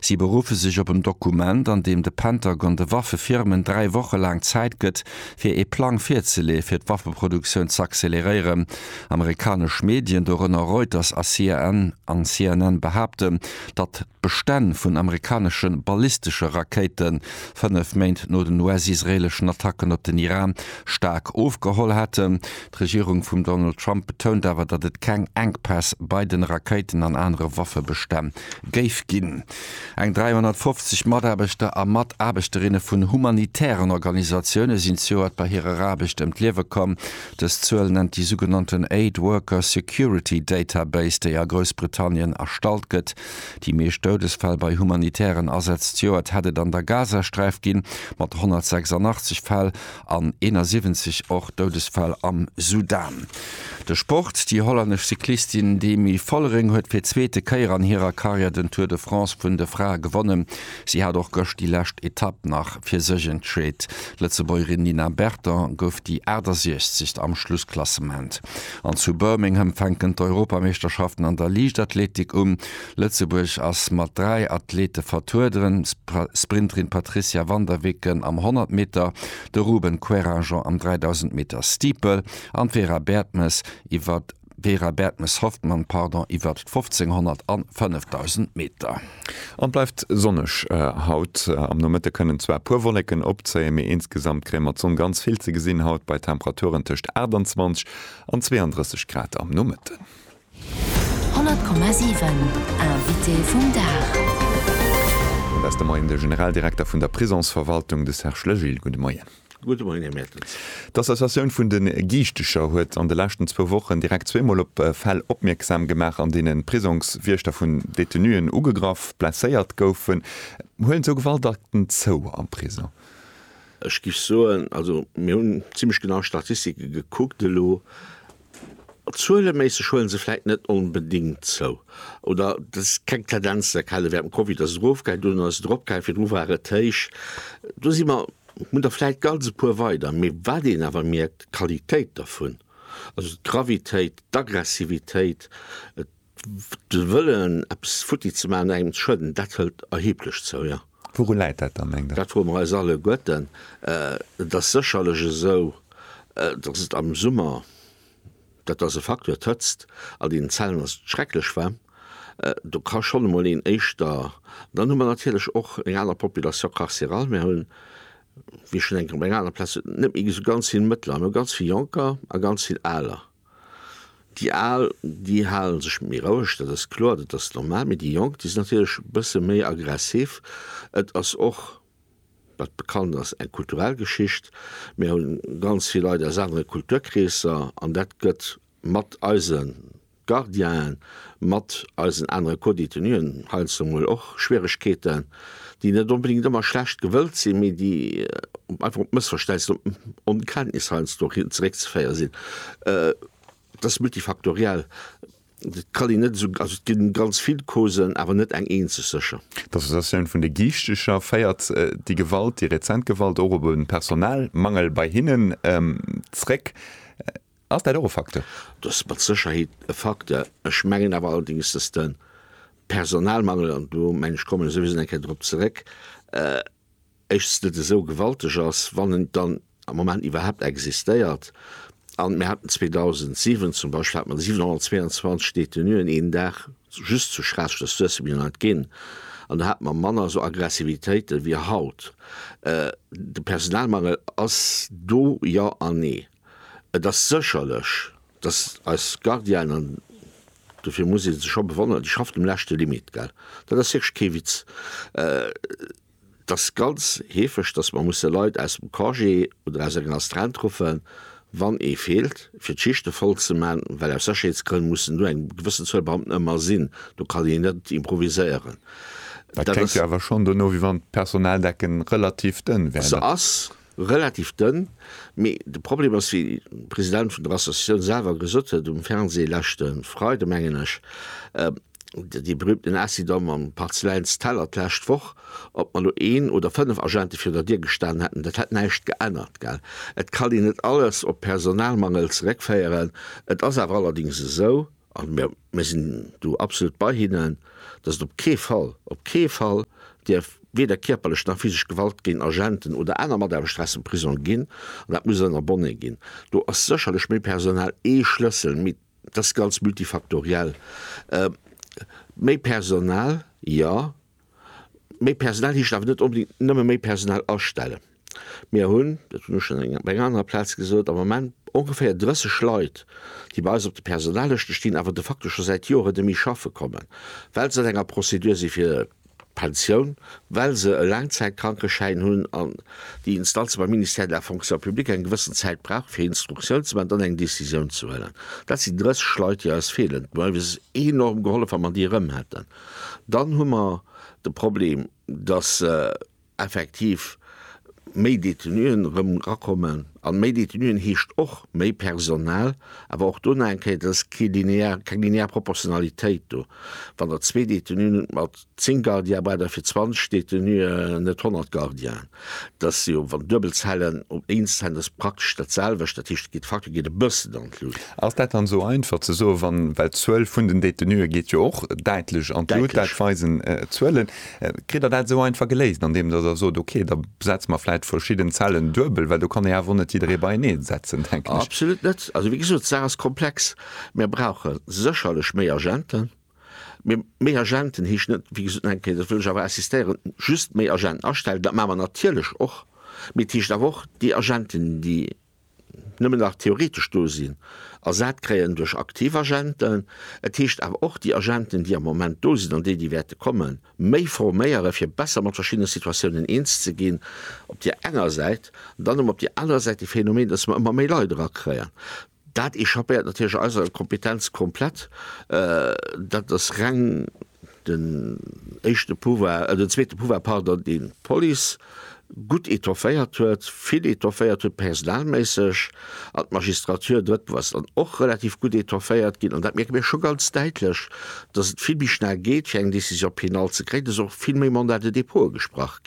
Si beruffe sech op en Dokument, an deem de Pentagon de Waffefirmen dräi Woche laang Zäit gëtt, fir ee Plang virzeleeë fir d'Waffeproduktioun z'acceleréieren. Amerikanesch Medien, dorënner Reuters a CNN, behaapten, datt d'Bestänn vun amerikanesche ballistesche Rakéite fënnef Méint no den US-israeeleschen Attacken op den Iran staark ofgeholl hätten. D'Regierung vum Donald Trump betount awer, datt et keng Enkpäss bei den Rakéiten an anere Waffebestänn géif ginn. Eng 350 Mataarbechter a Mataarbechterinnen vun humanitären Organisatioune sinn zejoert bei hirer Aarbecht ëm d'Liewe komm. Dës Zuel nennt déi sougenannten Aid Worker Security Database, déi a Groussbritannien erstallt gëtt. Déi meescht Doudesfäll bei humanitären Asätz zejoert hätt et an der Gazasträif ginn, mat 186 Fäll, an 71 och Doudesfäll am Sudan. De Sport, Déi hollännesch Cyclistin Demi Vollering huet fir zweete Kéier an hirer Karriär den Tour de France vun de Frae gewonnen. Si hat och gëscht déi lescht Etapp nach fir sech entscheet. D'Lëtzebuergerin Nina Berton gouf déi 68. am Schlussklassement. An zu Birmingham fänken d'Europameeschterschaften an der Liichtathletik un. Lëtzebuerg ass mat dräi Athlete vertrueden, d'Sprinterin Patricia Van der Wicken am 100 Meter, de Ruben Querrangen am 3000 Meter Steeple an d'Vera Bertmes iwwer Vera Bertmes-Hoffmann, pardon, iwwer d'Fofzénghonnert an 5000 Meter. An bleift sonneg haut. Am Nomëtte kënnen zwar e puer Wollécken opzéien, mee insgesamt kréie mer d'Sonn ganz vill ze gesinn haut bei Temperaturen tëscht 28 an 32 Grad am Nomëtten. 100,7 Invité vum Dag. Mat eis de Moien de Generaldirekter vun der Prisongsverwaltung, de Serge Legil. Gudde Moien. Gudde Moien, Här Mertens. D'Associatioun vun de Giichtecher huet an de leschten zwou Wochen direkt zweemol op Fäll opmierksam gemaach, an deenen d'Prisongswiechter vun Detenuen ugegraff, blesséiert goufen. Huelen esou Gewaltakten zou am Prisong? Ech géif soen, also mir hunn zimlech genau Statistike gekuckt elo, Zueleméisseg huelen se vläit net onbedéngt zou, oder et ass keng Tendenz ze erkennen. Während dem Covid ass et erofgaangen, dunn ass et eropgaangen, virdru war et héich. Do si mer, hunn der vläit ganz e puer weider. Mee wat een awer mierkt, d'Qualitéit dervun, also d'Gravitéit, d'Aggressivitéit, De Wëllen, eppes futti ze maachen, engem ze schueden, dat hëlt erheblech zou, jo. Wourun läit dat dann, mengt Der? Dat froe mer eis alleguerten. Et ass sécherlech esou, datt et am Summer, dat ass e Facteur, d'Hëtzt an deenen Zellen ass schrecklech waarm, do ka schonn emol een éischter. Dann hu mer natierlech och eng aner Population carcérale. Mir hunn, wéi schonn eng Kéier op enger anerer Plaz, net méi esou ganz vill Mëttler. Mir hu ganz vill Jonker a ganz vill Aler. Déi Al, déi hale sech méi roueg, dat ass kloer, dat ass normal, mee déi Jonk, déi sinn natierlech e bësse méi aggressiv. Et ass och, wat bekannt ass, eng kulturell Geschicht. Mir hu ganz vill Leit aus anere Kulturkreesser an dat gëtt mat eise Gardienen, mat eisen anere Co-Détenuen heiansdo mol och Schwieregkeeten. déi net onbedéngt ëmmer schlecht gewëllt sinn, mee déi einfach op Mëssverstäisser an op Onkenntnis heiansdo zeréckzeféiere sinn. Dat ass multifaktoriell, dat kann een net esou, also et gi ganz vill Causen, awer net eng eenzeg sécher. D'Associatioun vun de Giichteger féiert déi Gewalt, déi rezent Gewalt, och op e Personalmangel bei hinnen zeréck. Ass dat och e Facteur? Dat ass mat Sécherheet e Facteur. Ech mengen awer allerdéngs, datt de Personalmangel, an do mengen ech kommen ech souwisou eng Kéier drop zeréck, éischtens net esou gewalteg ass, wann en dann am Moment iwwerhaapt existéiert. An mir haten 2007 zum Beispill hat mer 722 Détenuen een Dag just zu Schraasseg, dat ass Suessem jo nach net ginn, an do hate mer manner esou Aggressivitéiten wéi haut. De Personalmangel ass do, jo an nee. Et ass sécherlech, dass eis Gardienen, dofir muss ee se scho bewonneren, déi schafft um leschte Limit, gell, dat ass wierklech kee Witz, et ass ganz heefeg, dass mer musse Leit aus dem Congé oder aus enger Astreinte ruffen, wann ee feelt, fir d'Schichte voll ze man, well aus Sécherheetsgrënn mussen do eng gewëssen Zuel Beamten ëmmer sinn, do kann een net improviséieren. Dat kléngt jo awer schonn dono, wéi wann d'Personaldecken relativ dënn wär. Se ass Relativ dënn, mee de Problem ass, wéi de President vun der Associatioun selwer gesot huet um Fernsee leschte Freide mengen ech, dee berüümten Acidom mam Parzeläins Teller d'lescht Woch, ob mer elo een oder fënnef Agente virun der Dier gestan hätten, dat hätt näischt geännert. Gell, et kann een net alles op Personalmangel zeréckféieren, et ass awer allerdéngs esou, A mir sinn do absolut bei hinnen, dass et op kee Fall, op kee Fall dierf weder kierperlech nach physesch Gewalt géint Agenten oder aner Mataarbechter aus dem Prisong ginn. An dat muss en Abonné ginn. Do ass sécherlech méi Personal ee Schlëssel, mee dat ass ganz multifaktoriell. Méi Personal, jo. Méi Personal heescht awer net onbedéngt nëmme méi Personal astellen. Mir hunn, dat hunn ech schonn op enger anerer Plaz gesot, am Moment ongeféier 30 Leit, déi bei eis op de Personallëschte stinn, awer de facto scho säit Joer et nemme schaffe kommen, well se an enger Prozedur si fir d'Pensioun, well se e Laangzäitkrankeschäin hunn an déi Instanze beim Ministère de la Fonction publique eng gewëssen Zäit brauchen, fir Instruktioun ze maachen, dann eng Décisioun ze huelen. Dat sinn 30 Leit, déi eis feelen. D'Mei wier enorm gehollef, wa mer déi erëm hätten. Dann hu mer de Problem, dass effektiv méi Détenuen erëm erakommen. A méi Détenuen heescht och méi Personal. Awer och do nach eng Kéier, dat ass kee linear, keng linear Proportionalitéit do. Wann Der zwee Détenuen hutt mat zéng Gardiabeiter fir 20 Détenuë net 100 Gardiaen. Dat ass jo, wann duebel Zellen op éins Zell, dat ass praktesch dat selwecht. Dat heescht, de Facteur geet e bëssen an d'Lut. Ass dat dann esou einfach ze soen, wann, well d'Zuel vun den Détenue geet jo och däitlech an d'Lut, dat weisen d'Zuelen. Kritt Der dat esou einfach geléist, andeem Der da sot, okay, da setze mer vläicht verschidden Zellen duebel? Well do kann ee awer och net jidderee beienee setzen, denken ech. Absolut net. Also, wéi gesot, d'Saach ass komplex. Mir brauche sécherlech méi Agenten. Mee méi Agenten heescht net, wéi gesot, eng Kéier, dat wëll ech awer insistéieren, just méi Agenten astellen. Dat maache mer natierlech och. Mee et heescht awer och, déi Agenten, déi nëmmen nach theoretesch do sinn, ersat kréien duerch aktiv Agenten. Et heescht awer och, déi Agenten, déi am Moment do sinn an déi, déi wäerte kommen, méi forméieren, fir besser mat verschiddene Situatiounen eens ze ginn, op där enger Säit. Dann hu mer op där anerer Säit de Phänomen, dass mer ëmmer méi Leit erakréien. Dat echappéiert natierlech eiser Kompetenz komplett. Dat ass reng den éischte Pouvoir, den zweete Pouvoir, pardon, dee d'Police gutt etofféiert huet, vill etofféiert huet personalméisseg, an d'Magistrature, drëtt Pouvoir, ass dann och relativ gutt etofféiert ginn. An dat mierke mir scho ganz däitlech, dass et vill méi schnell geet fir eng Décision pénale ze kréien. Et ass och vill méi Mandat de dépôt agesprach.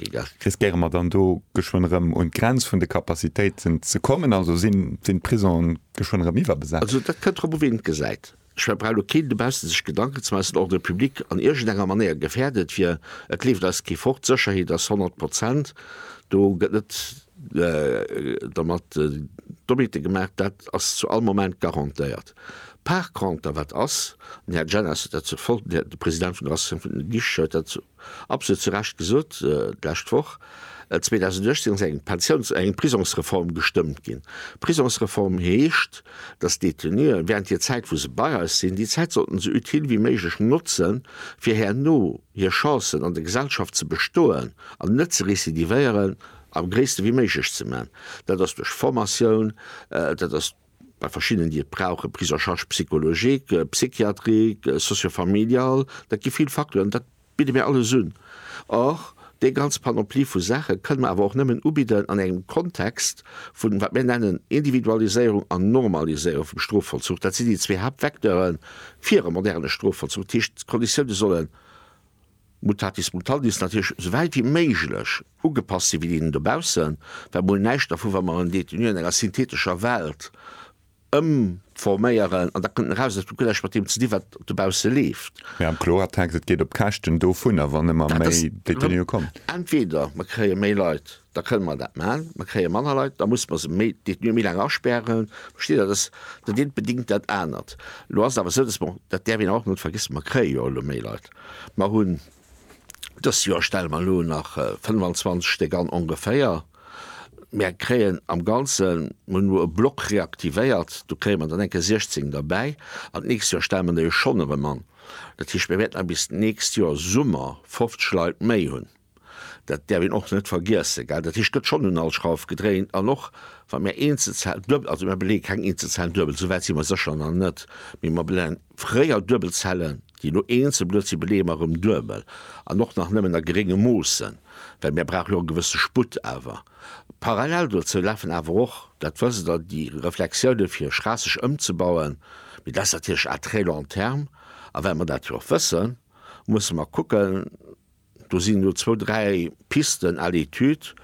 Riskéiere mer dann do geschwënn erëm un d'Grenz vun de Capacitéiten ze kommen? Also sinn d'Prisonen geschwënn erëm iwwerbesat? Also dat kënnt drop u wien et gesäit. Ech mengen et brauch elo keen dobaussen sech Gedanken ze maachen, dass den Ordre public an iergendenger Manéier gefährdet wier. Et leeft eis kee fort, d'Sécherheet ass 100 Prozent, do gëtt net dermat Dommite gemaach, dat ass zu all Moment garantéiert. Par conter wat ass, an den Här Jennes huet dat, de President vun der Associatioun vun de Guicheten huet dat Absolut zu Recht gesot, d'lescht Woch, 2018, ass eng Pensiouns-, eng Prisongsreform gestëmmt ginn. Prisongsreform heescht, dass d'Détenuen während hir Zäit, wou se bei eis sinn, déi Zäit sollten esou utile wéi méiglech notzen, fir herno hir Chancen an der Gesellschaft ze bestoen an net ze récidivéieren, am gréisste wéi méiglech ze man. Dat ass duerch Formatioun, dat ass. Bei verschiddenen, déi et brauchen, prise en charge psychologique, psychiatrique, socio-familiale, dat gi vill Facteuren, dat bidde mir alles un. Or, déi ganz Panoplie vu Saache kënne mer awer och nëmmen ubidden an engem Kontext vun, wat mir nennen, Individualiséierung an Normaliséierung vum Strofvollzuch. Dat sinn déi zwee Haaptvecteure fir e moderne Strofvollzuch. Dat heescht, d'Konditiounen solle. Mutatis mutandis natierlech esou wäit wéi méiglech ugepasst sinn, wéi déi do baussen, well mol näischt dervu, wa mer en Détenu an enger synthetescher Welt ëmforméieren an da kënnt en eraus, dat huet guer näischt mat deem ze dinn, wat dobausse leeft. Mä am Kloertext, et geet op Käschten dovunner, wann ëmmer méi Détenue kommen. Entweder mer kréie méi Leit, Da kënnen mer dat maachen. Mer kréie manner Leit, da musse mer se méi Détenue méi laang asperren. Versteet Der? Dass dat eent bedingt dat anert. Elo ass et awer esou, dass mer, dat däerf een och net vergiessen, mer kréie jo elo méi Leit. Mer hunn dëst Joer stelle mer elo nach 25 Stéck an ongeféier. Mer kréien am Ganzen, mer hunn elo e Block reaktivéiert, do kréie mer dann eng Kéier 16 derbäi an d'nächst Joer stelle mer der jo schonn erëm an. Dat heescht, mer wäerten dann bis d'nächst Joer Summer 50 Leit méi hunn. Dat däerf een och net vergiessen. Dat heescht, et gëtt schonn un all Schrauf gedréint. An och wa mir Eenzelzellen duebel, also mir beleeë keng Eenzelzellen duebel, esou wäit si mer sécher nach net, mee mer beleeën fréier duebel Zellen, déi elo eenzel bluet sinn, beleeë mer erëm duebel an och nach nëmmen a gerénge Moossen, well mir brauche jo e gewësse Sputt. Awer parallel dozou lafen awer och, dat wësst Der, déi Reflexioune fir Schraasseg ëmzebauen, mee dat ass natierlech à très long terme. A well mer dat jo och wëssen, musse mer kucken, Do sinn elo zwou, dräi Pisten à l'étude,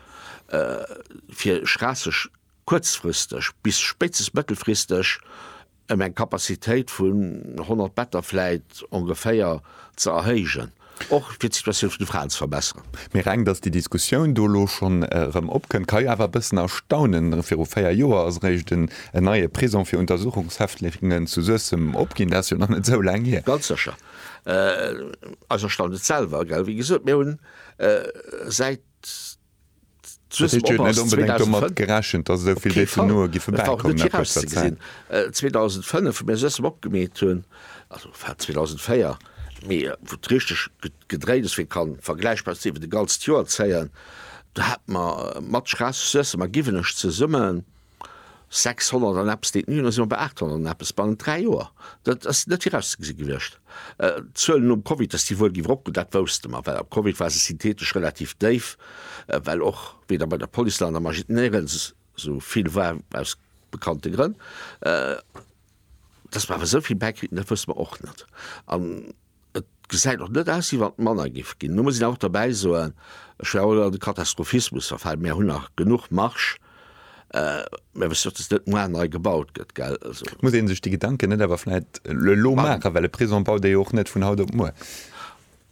fir Schraasseg kuerzfristeg bis spéitstens mëttelfristeg ëm eng Capacitéit vun 100 Better vläit ongeféier ze erhéijen, och fir d'Situatioun vun de Fraen ze verbesseren. Mee reng, dass déi Diskussioun do elo schonn erëm opkënnt, ka jo awer e bëssen erstaunen. Viru véier Joer ass eréischt en neie Prisong fir Untersuchungshäftlingen zu Suessem opginn. Dat ass jo nach net esou laang hier. Ganz sécher. Eis erstaunt et selwer, gell. Wéi gesot, mir hunn säit Swiss Mobile 2005. Net onbedéngt domat gerechent, dass esou vill Detenuë giffe bäikommen. Op kee Fall. Et war och net virauszegesinn. 2005, wou mir Swiss Mob gemeet hunn, also war 2004, mee wou et richteg gedréit ass, wéi ka vergläichbar sinn, wéi de Gall s'Joer zéien, do hate mer mat Schraass Suessem a Giwenech zesummen, 600 an eppes Detenuen, da si mer bei 800 an eppes bannent dräi Joer. Dat ass net virauszegesi gewiescht. D'Zuelen nom Covid, datt déi wuel géif eropgoen, dat wousste mer, well am Covid war se syntheetesch relativ déif, well och weder bei der Police nach an der Magistnérel esou vill war, aus bekannte Grënn. Datt mer awer esou vill bäikritt hunn, dat wousste mer och net. Et gesäit och net aus, wéi wann et manner géif ginn. Elo muss een awer och derbäi soen, ech wär och elo an de Katastrophismus verfall, mir hunn nach genuch Marsch. Mir wëssen och, datt net moar nei gebaut gëtt, gell. Also. Muss ee sech déi Gedanken net awer vläicht elo maachen, well e Prisong baut ee jo och net vun haut op muer.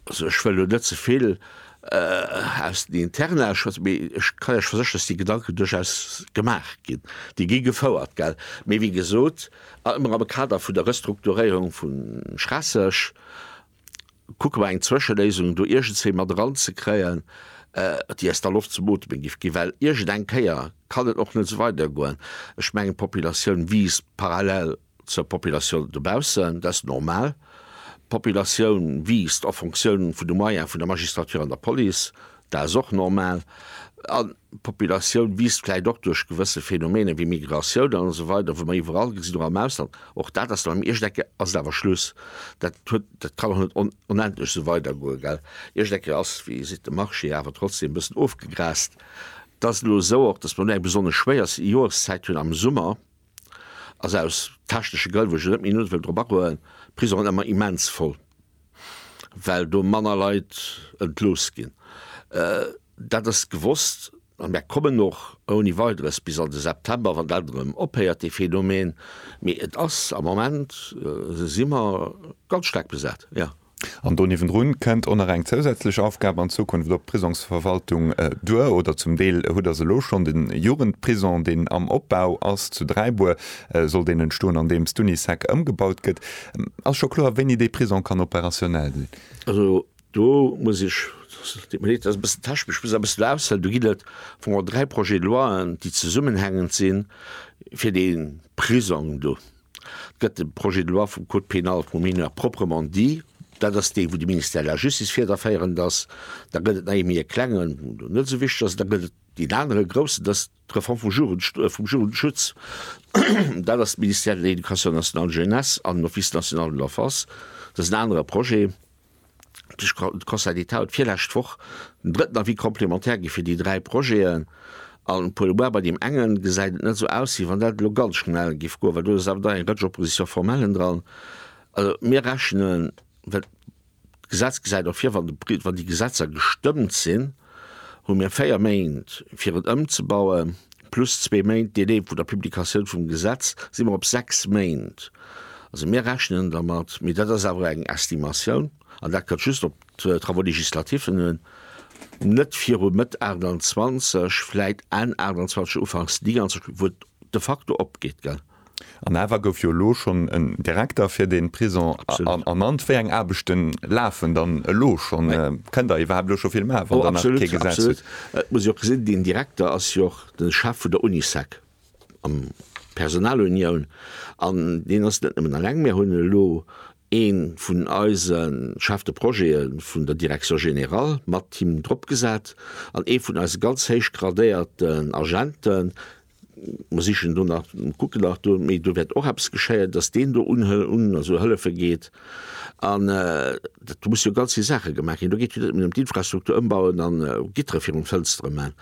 Also ech wëll elo net ze vill aus den Interna schwätzen, mee ech kann Iech versécheren, datt déi Gedanken duerchaus gemaach ginn, déi gi gefouert, gell. Mee wéi gesot, A ëmmer am Kader vun der Restrukturéierung vu Schraasseg kucke mer eng Zwëscheléisung do iergendswéi mat eranzekréien, déi eis da Loft zum Ooteme giff ginn, well iergendeng Kéier kann et och net esou weidergoen. Ech mengen, d'Populatioun wiisst parallel zur Populatioun dobaussen, dat ass normal. D'Populatioun wiisst en Fonctioun vun de Moyens vun der Magistrature an der Police, Dat ass och normal. An d'Populatioun wiisst vläicht och duerch gewësse Phänomene wéi Migratioun an esou weider, wou mer iwwerall gesinn, och am Ausland. Och dat ass do am Ierschdecke ass et awer Schluss. Dat huet, dat kann och net onendlech esou weidergoen, gell. Ierschdecke ass, wéi Dir sidd, de Marché, awer trotzdem e bëssen ofgegrast. Et ass elo esou och, datt mer elo eng besonnesch schwéier Joreszäit hunn am Summer. ass aus technesche Grënn, wou ech elo net méi no wëll drop agoen, d'Prisongen ëmmer immens voll, well do manner Leit entlooss ginn. Dat ass gewosst a mär kommen och ouni Weideres bis an de September, wann dat erëm ophéiert, dee Phänomen. Mee et ass am Moment, si mer ganz staark besat, jo. An do niewendrun kënnt och nach eng zousätzlech Aufgab an Zukunft op d'Prisongsverwaltung duer, oder zum Deel huet der se elo schonn. De Jugendprison, deen am Opbau ass zu Dräibuer, soll deen entstoen, andeems d'Unisec ëmgebaut gëtt. Ass scho kloer, wéini dee Prison kann operationell sinn? Also do muss ech, et deet mir leed, dat ass e bëssen technesch, ech muss awer e bëssen aushelen. Do ginn et au fond dräi Projet de loien, déi zesummenhängend sinn, fir dee Prisong do. Gëtt de Projet de loi vum Code pénal pour mineurs proprement dit, dat ass dee wou de Ministère de la Justice fiederféierend ass, da gëtt et nei méi e klengen, deen net esou wichteg ass, da gëtt et deen anere groussen, dat ass d'Reform vum Jugend, vum Jugendschutz, dat ass de Ministère de l'Éducation nationale, de la Jeunesse an den Office national de l'enfance, dat ass en anere Projet. de Conseil d'État huet virlescht Woch den drëtten Avis complémentaire gi fir déi dräi Projeten, an Paul Lebois, bei deem engen gesäit et net esou aus, wéi wann dat elo ganz schnell géif goen, well do ass awer dann eng Rëtsch Opposition formelle dran. Also mir rechnen, well d'Gesetz gesäit och vir, wann déi Gesetzer gestëmmt sinn, hu mir véier Méint, fir et ëmzebauen, plus zwee Méint Delai vu der Publikatioun vum Gesetz, si mer op sechs Méint. Also mir rechnen dermat, mee dat ass awer eng Estimatioun, an dat kënnt just op d'Travaux législatif'en un, net viru Mëtt 28, vläit Enn 28, ufanks 29, wou et de facto opgeet, gell. An awer gouf jo elo schonn en Direkter fir de Prisong ernannt. Wéi eng Aarbechte lafen dann elo schonn? Kënnt Der iwwerhaapt elo scho vill maachen, wann Der nach kee Gesetz hutt? Absolut. Et muss ee jo och gesinn, deen Direkter ass jo och de Chef vun der Unisec an d'Personalunioun. An deen ass net nëmmen eleng. Mir hunn elo ee vun eise Chef de Projete vun der Direction générale mat him dropgesat an ee vun eise ganz héich gradéierten Agenten, Mer sichen do nach, kucken nach do, mee do wäert och eppes geschéien, datt deen do un, un, also hëllefe geet. An do musse jo ganz vill Saache gemaach ginn. Do geet jo net nëmmen ëm d'Infrastruktur ëmbauen an Gittere virun d'Fënstere man.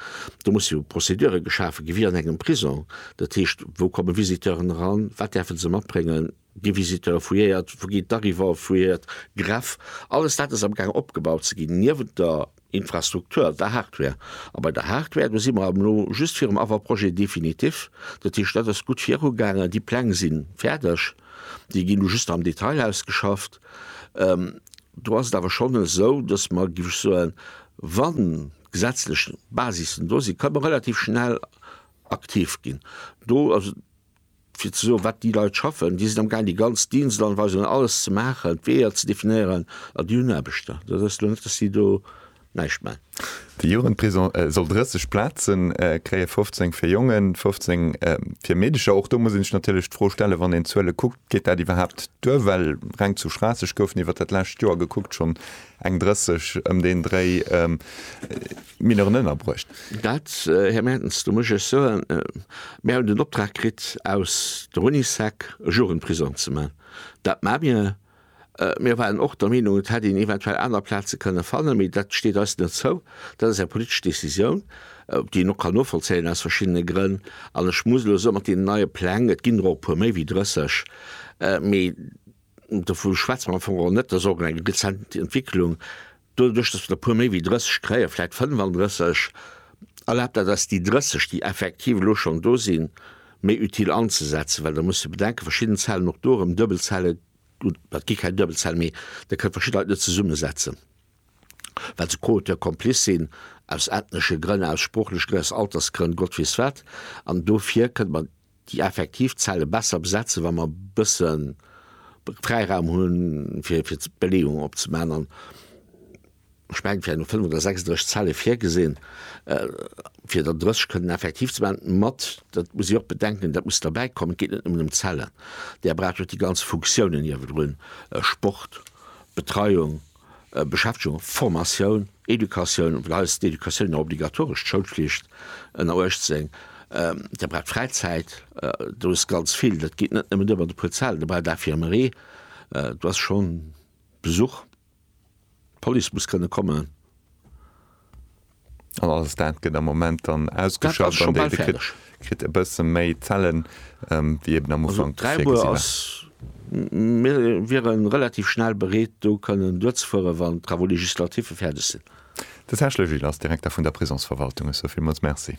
Do musse jo Procédure geschafe gi wéi an engem Prisong. Dat heescht, wou kommen Visiteuren eran, wat däerfe se matbréngen, Gi Visiteure fouilléiert? Wou ginn d'Arrivante fouilléiert? Greff, alles dat ass am Gaang opgebaut ze ginn, niewent der Infrastruktur, der Hardware. A bei der Hardware, do si mer elo just virum Avant-projet définitif. Dat heescht, dat ass gutt virugaangen, déi Pläng si fäerdeg, déi ginn elo just am Detail ausgeschafft. Do ass et awer schonn esou, datt mer, géif ech soen, wann d'gesetzlech Basissen do sinn, ka mer relativ schnell aktiv ginn. Do ass et. fir ze soen, wat déi Leit schaffen, déi sinn am gaang déi ganz Dienstanweisungen, alles ze maachen, d'Weeër ze definéieren, a déi hunn Aarbechter. Dat ass elo net, datt si do näischt maachen. De Jugendprison soll 30 Plaze kréien, 15 fir Jongen, 15 fir Meedercher. Och do muss ee sech natierlech d'Fro stellen, wann een d'Zuele kuckt, geet dat iwwerhaapt duer? Well reng zu Schraasseg goufen iwwer dat lescht Joer gekuckt schonn Eng 30, ëm deen Dréi, Mineuren ënnerbruecht. Dat, Här Mertens, do muss ech iech soen, Mir hunn den Optrag kritt aus der Unisec, e Jugendprisong ze man. Dat ma mir. Mir waren och der Meenung, et hätt een eventuell aner Plaze kënne fannen, mee dat steet eis net zou. Dat ass eng politesch Decisioun, déi een och kann novollzéien aus verschiddene Grënn. An ech muss elo soen, mat deenen neie Pläng, et ginn der och e puer méi wéi 30, mee. Dovu schwätze mer am Fong och net, dat ass och eng rezent Entwicklung, doduerch datt mer e puer méi wéi 30 kréien, vläicht 35, erlaabt dat eis déi 30, déi effektiv elo schonn do sinn, méi utile anzesetzen. Well da muss de bedenken, verschidden Zellen, och do erëm Duebelzelle, gutt dat gi keng Duebelzellen, mee Der kënnt verschidde Leit net zesummesetzen, well se co-auteurs complices sinn, aus ethnesche Grënn, aus sproochleche Grënn, aus Altersgrënn, Gott weess wat. An dofir kënnt mer déi effektiv Zelle besser besetzen, wa mer bësse Fräiraum hu fir d'Beleeung opzemaachen. An ech mengen, fir elo 35 oder 36 Zelle virgesinn, fir der 30 kënnen effektiv ze maachen, mat, dat muss ee och bedenken, dat muss derbäikommen, et geet net nëmmen ëm d'Zellen, Der braucht och déi ganz Funktiounen ierwerdrun, Sport, Betreiung, Beschäftegung, Formatioun, Educatioun, well eis d'Educatioun jo obligatoresch, d'Schoulflicht ënner 18, Dir braucht Fräizäit, do ass ganz vill, dat geet net nëmmen duer mat e puer Zalen, Dir braucht d'Infirmerie, do ass schonn Besuch, d'Police muss kënne kommen. An alles dat gëtt am Moment dann ausgeschafft an déi kritt kritt e bësse méi Zellen, wéi eben am Ufank virgesi war. Mir wiere relativ schnell bereet, do kënnen duerzefueren, wann d'Travaux législatiffe fäerdeg sinn. De Serge Le Gil ass Direkter vun der Prisongsverwaltung. Ech soe villmools Merci.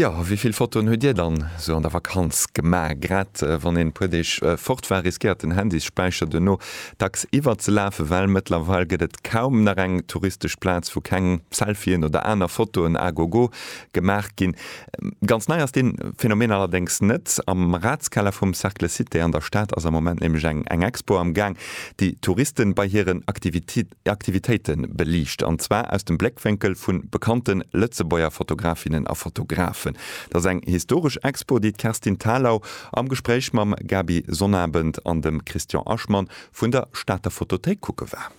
Jo, wéi vill Fotoen huet Dir dann esou an der Vakanz gemaach? Grad wann een e puer Deeg fort war, riskéiert den Handys-Späicher duerno dacks iwwerzelafen, well mëttlerweil gëtt et kaum nach eng touristesch Plaz, wou keng Selfien oder aner Fotoen à gogo gemaach ginn. Ganz nei ass dee Phänomen allerdéngs net. Am Ratskeller vum Cercle Cité an der Stad ass am Moment nämlech eng Expo am Gaang, déi Touristen bei hiren Aktivitéiten Aktivitéite beliicht, an zwar aus dem Bléckwénkel vu bekannte Lëtzebuerger Fotografinnen a Fotografen. Dat ass eng historesch Expo, déi d'Kerstin Thalau am Gespréich mam Gaby Sonnabend an dem Christian Aschmann vun der Stater Fotothéik kucke war.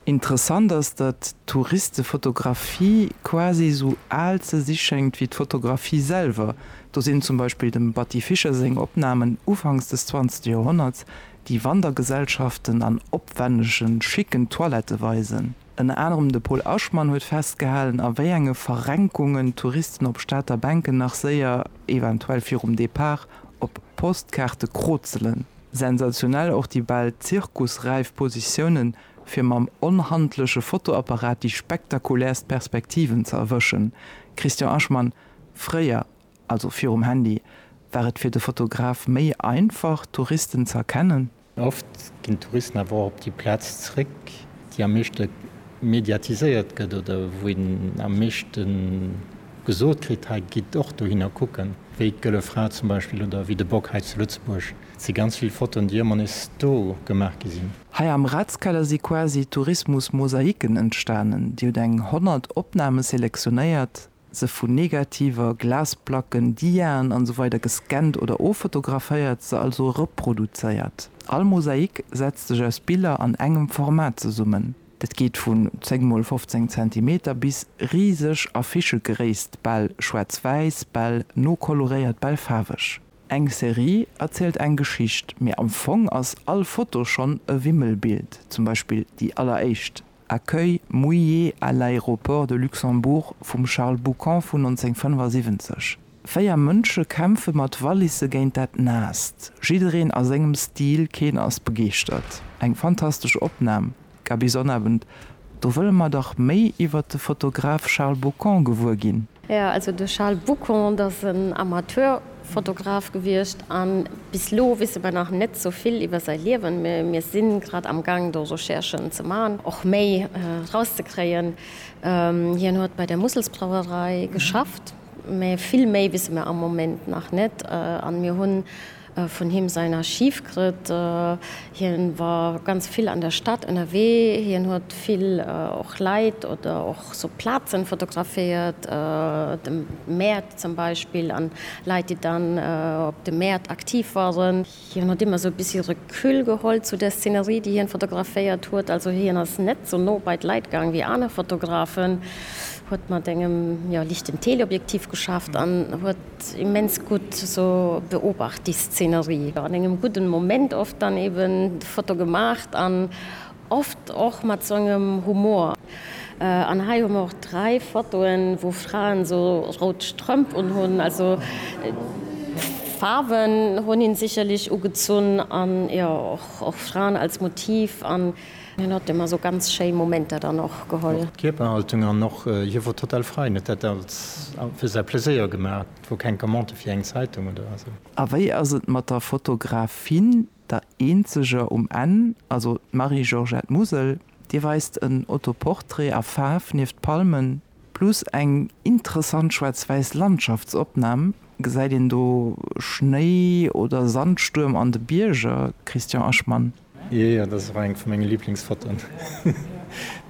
Interessant ass, datt d'Touristefotografie quasi esou al ze si schéngt wéi d'Fotografie selwer. Do sinn zum Beispill dem Batty Fischer seng Opnamen ufanks des 20. Joerhonnerts déi Wandergesellschaften an opwännege schicken Toilette weisen. Ënner anerem de Pol Aschmann huet festgehalen, a wéi enge Verrenkungen d'Touristen op Stater Bänken nach séier, eventuell virum Depart, op Postkaarte krozelen. Sensationell och déi bal zirkusräif Positiounen, fir mam onhandleche Fotoapparat déi spektakulärst Perspektiven ze erwëschen. Christian Aschmann, Fréier Also virum Handy war et fir de Fotograf méi einfach, Touristen ze erkennen. Oft ginn d'Touristen awer och op déi Plaz zeréck, déi am meeschte mediatiséiert gëtt oder wou een am meeschte gesot kritt, hei gitt och dohinner kucken, wéi d'Gëlle Fra zum Beispill oder wéi de Bock hei zu Lëtzebuerg. Et si ganz vill Fotoen, déi ëmmer nees do gemaach gi sinn. Hei am Ratskeller si quasi Tourismus-Mosaiken entstanen. Dir hutt eng 100 Opname selektionéiert, se vun Negativer, Glasplacken, Diaen an esou weider gescannt oder offotograféiert, se also reproduzéiert. All Mosaik setzt sech aus Biller an engem Format zesummen. Dat geet vun 10 mol 15 Zentimeter bis riseg Affichegréisst, bal schwaarz-wäiss, bal no koloréiert, bal faarweg. Eng Serie erzielt eng Geschicht, mee am Fong ass all Foto schonn e Wimmelbild, zum Beispill déi alleréischt, Accueil mouillés à l'aéroport de Luxembourg vum Charles Boucant vun 1975. Véier Mënsche kämpfe mat Wallisse géint dat Naasst. Jiddereen a sengem Stil, keen ass begeeschtert. Eng fantastesch Opnam, Gaby Sonnabend, do wëlle mer dach méi iwwert de Fotograf Charles Boucant gewuer ginn. Jo, also de Charles Boucon, dat ass en Amateurfotograf gewiescht a bis elo wisse mer nach net sou vill iwwer säi Liewen, mä mir si grad am Gang do Recherchen ze maachen, och méi rauszekréien. Hien huet bei der Musselsbrauerei geschafft, mä vill méi wisse mer am Moment nach net an mir hunn, vun him säin Archiv krëtt. Hien war ganz vill an der Stad ënnerwee, hien huet vill och Leit oder och sou Plazen fotograféiert, de Mäert zum Beispill an Leit déi dann op de Mäert aktiv waren. Hien huet ëmmer sou e bessi Recul geholl zu der Szenerie déi hien fotograféiert huet, also hien ass net sou no bei d'Leit gaang wéi aner Fotografen, huet mat engem jo lichten Teleobjektiv geschafft an huet, Immens gudd so beobacht déi Szenerie, an engem gudden Moment oft dann eben d'Foto gemaacht an oft och mat sou engem Humor. An hei hun mer och 3 Fotoen wou Fraen so roud Strëmp un hun, also Faarwen hun een sicherlich ugezunn, an jo och Fraen als Motiv. Hien hat ëm esou ganz schéi Momenter dann och geholl. Och d'Kierperhaltung an och hie wor total frei, en huet dat als fir säi Pleséier gemaach. Et wor keng Commande fir eng Zeitung oder esou. A wéi ass et mat der Fotografin, der eenzeger um Enn, also d'Marie-Georgette Musel. Dir weist en Autoportrait a Faarf nieft Palmen, Plus eng interessant schwarzwäiss Landschaftsopnahm, gesäit een do Schnéi oder Sandstuerm an de Bierger? Christian Aschman. Jee, dat ass och eng vu menge Liblingsfotoen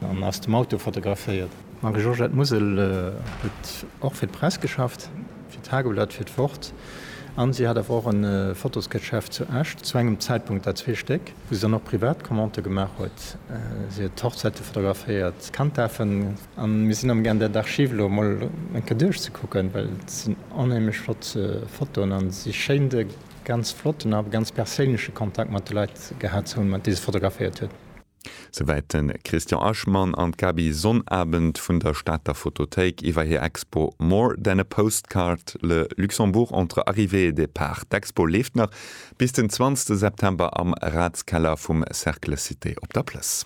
an aus dem Auto fotograféiert. D'Marie-Georgette Musel huet och fir d'Press geschafft, fir d'Tageblatt, fir d'Wort an si hat awer och e Fotosgeschäft zu Esch, zu engem Zäitpunkt der zwee Stéck, wou se dann och privat Commandë gemaach huet. Si huet Hochzäite fotograféiert, Kanddaafen, A mir sinn am Gaang där d'Archiv elo emol eng Kéier duerchzekucken, well et sinn onheemlech flott Fotoen a si schéint e ganz flotten a ganz perséinleche Kontakt mat de Leit gehat ze hunn, déi se fotograféiert huet. Souwäit de Christian Aschmann an d'Gaby Sonnabend vun der Stater Fotothéik iwwer hir Expo More than a postcard, Le Luxembourg entre arrivée et départ. D'Expo leeft nach bis den 20 September am Ratskeller vum Cercle Cité op der Plëss.